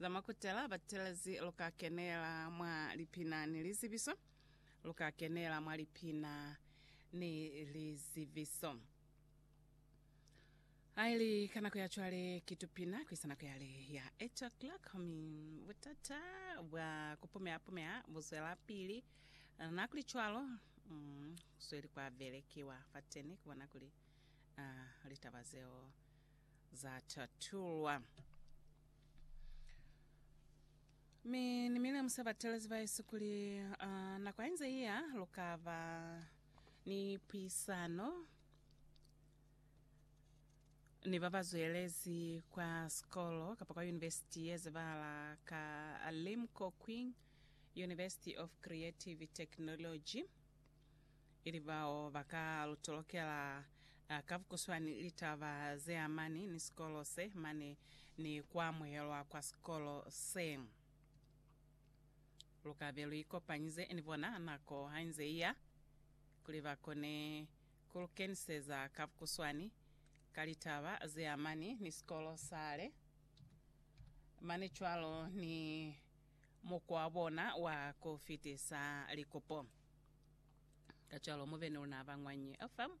Za makutela batelezi lu ka kenela mwa lipina ni lizibiso. Lu ka kenela mwa lipina ni lizibiso. Ha i li ka nako ya cwale, ki tupina ku isa nako yale ya eight o'clock. Mi butata bwa ku pumeha-pumeha bu zwelapili. Nakulicwalo, mm ku sweli kwa belekiwa fateni ku bona kuli, uh, litaba zeo. za tatulwa. Mi Ni milemusa batelezi ba Yesu kuli uh, nako hainze iya, lukaba ni puisano ni ba ba zwelezi kwa sikolo kapa kwa yunivesiti ye zebahala ka Limco Qing University of Creative Technology. ili bao ba ka lu tolokela ka bukuswani litaba ze amani ni sikolo se mane ni ku amuhelwa kwa sikolo se. Lu ka be lu ikopanyize ni bona nako ha inze i ya, kuli ba kone ku lu keniseza ka bukuswani ka litaba ze amani ni sikolo sale, mane cwalo ni mukwa wa bona wa ku fitisa likupo. Kacwalo mubeni una ba Ñwanyi FM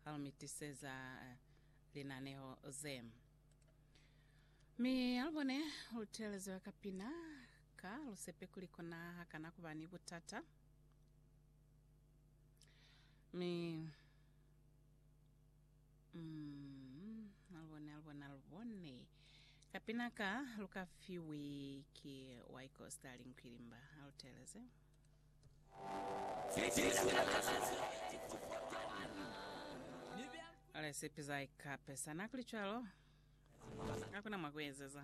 hau mi tiseza linaneho ze. Mi alubone lu telezwa ka pina ka lu sepe kuli kona hakana kuba ni butata. Mi mm alubone alubone alubone ka pina ka lu ka fiwi ki Ykostal Nkwilimba. Alu teleze. Ale sepiza ikape sana kuli cwalo. Hakuna mwa kuezeza.